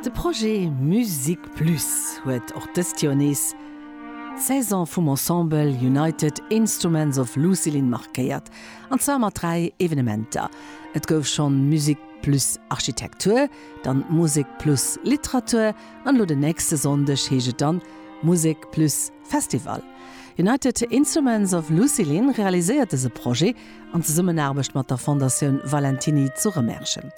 De Projet Musique Plus huet och dëst Joer nees d'Saison vum Ensemble United Instruments of Lucilin markéiert, an zwar mat dräi Evenementer. Et gouf schonn d'Musique Plus Architektur, dann d'Musique Plus Literatur an elo den nächste Sonndeg heescht et dann Musique Plus Festival. United Instruments of Lucilin realiséiert dëse Projet an Zesummenaarbecht mat der Fondatioun Valentiny zu Remerschen.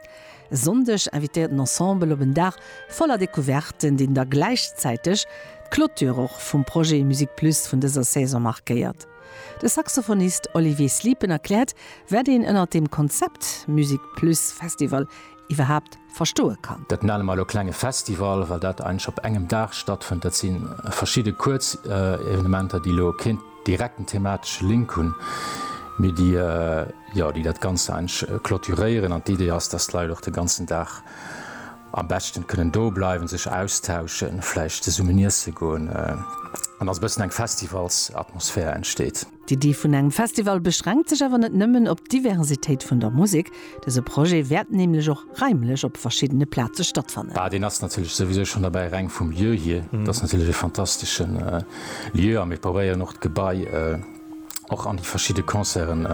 E Sonndeg invitéiert den Ensemble op en Dag voller Decouverten, deen da gläichzäiteg d'Clôture och vum Projet Musique Plus vun dëser Saison markéiert. De Saxophonist Olivier Sliepen erkläert, wat een ënnert dem Konzept Musique Plus Festival iwwerhaapt verstoe kann. Dat nenne mer elo klenge Festival, well dat eigentlech op engem Dag stattfënnt. Dat si verschidde kuerz Evenementer, déi elo keen. direkten thematesche Link hunn, mee déi, jo, déi dat Ganzt eigentlech clôturéieren. An d'Idee ass, dass d'Leit och de ganzen Dag am beschten kënnen do bleiwen, sech austauschen, vläicht zesummen iesse goen an dass e bëssen eng Festivalsatmosphär entsteet. D'Iddi vun engem Festival beschränkt sech awer net nëmmen op d'Diversitéit vun der Musek, Dëse Projet wäert nämlech och raimlech op verschiddene Plaze stattfannen. Bah, deen ass natierlech souwisou schonn derbäi, reng vum Lieu hier. Et ass natierlech e fantastesche Lieu a mir probéieren och d'Gebai och an déi verschidde Concerten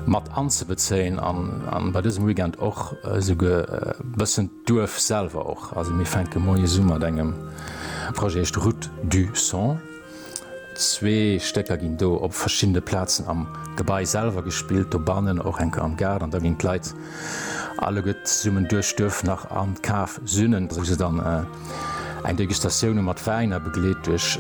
mat anzebezéien an bei dësem Weekend och esouguer e bëssen d'Duerf selwer och. Also mir fänke moies u mat engem Projet, heescht Route du son. Zwee Stécker ginn do op verschiddene Plazen am Gebai selwer gespillt, dobannen, och enker am Gaart, an da ginn d'Leit alleguer zesummen duerch d'Duerf nach an d'Kaf sünnen, wou se dann eng Degustatioun hu mat Wäin a begleet duerch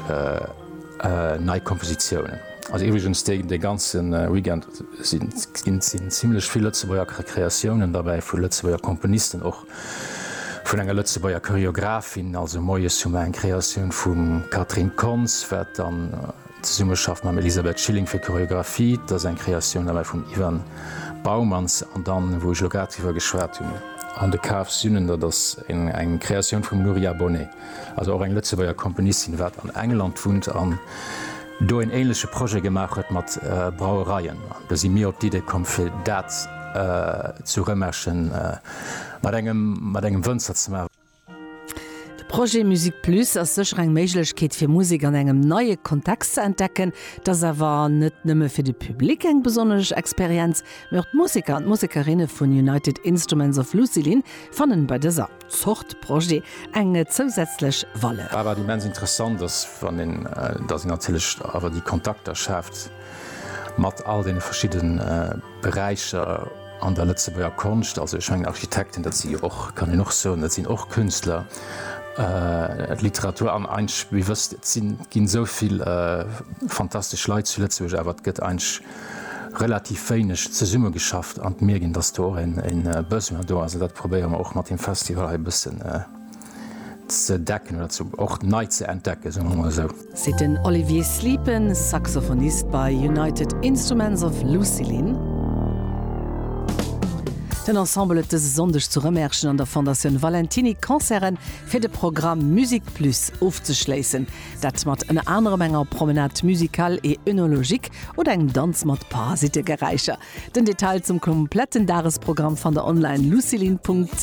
nei Kompositiounen. Also iwwregens dee ganze Weekend sinn zimmlech vill Lëtzebuerger Kreatiounen derbäi, vu Lëtzebuerger Komponisten och. Vun enger Lëtzebuerger Choreographin, also moies hu mer eng Kreatioun vum Catherine Kontz, wat dann zesumme schafft mam Elisabeth Schilling fir d'Choreographie. Dat ass eng Kreatioun elei vum Ivan Baumans. An dann, wou ech elo grad driwwer geschwat hunn, On the Cave Sünen, dat ass eng Kreatioun vum Nuria Bonnet, also och eng Lëtzebuerger Komponistin, wat an England wunnt an do en ähnleche Projet gemaach huet mat Brauereien. An do si mir op d'Idee komm, fir dat ze remèchen. mat engem Wënzer ze maachen. De Projet Musique Plus ass sécher eng Méiglechkeet fir Musek an engem neie Kontext ze entdecken. Et ass awer net nëmme fir de Public eng besonnesch Experienz, mee och d'Museker an d'Musekerinne vun United Instruments of Lucilin fannen bei dëser Zort Projet eng zousätzlech Valeur. Wat immens interessant ass, datt een natierlech awer déi Kontakter schaaft mat all deene verschidde Beräicher. An der Lëtzebuerger Konscht, also ech mengen Architekten, dat si jo och, kann een och soen, dat sinn och Künstler, d'Literatur, an eigentlech, wie wësst, et si ginn esou vill fantastesch Leit zu Lëtzebuerg, awer et gëtt eigentlech relativ wéineg zesummegeschafft. An d'Mierkt een, datt do och e Besoin do ass, an dat probéiere mer och mat deem Festival hei e bëssen, ze decken oder ze och nei ze entdecken, soe mer emol esou. Seet den Olivier Sleepen, Saxophonist bei United Instruments of Lucilin. Den Ensemble huet dëse Sonndeg zu Rëmerschen an der Fondatioun Valentiny Concerte fir de Programm Musique Plus ofzeschléissen. Dat mat ënner anerem enger Promenade musicale et œnologique oder engem Danz mat Parasitegeräischer. Den Detail zum kompletten Dagesprogramm fannt der online, lucilin.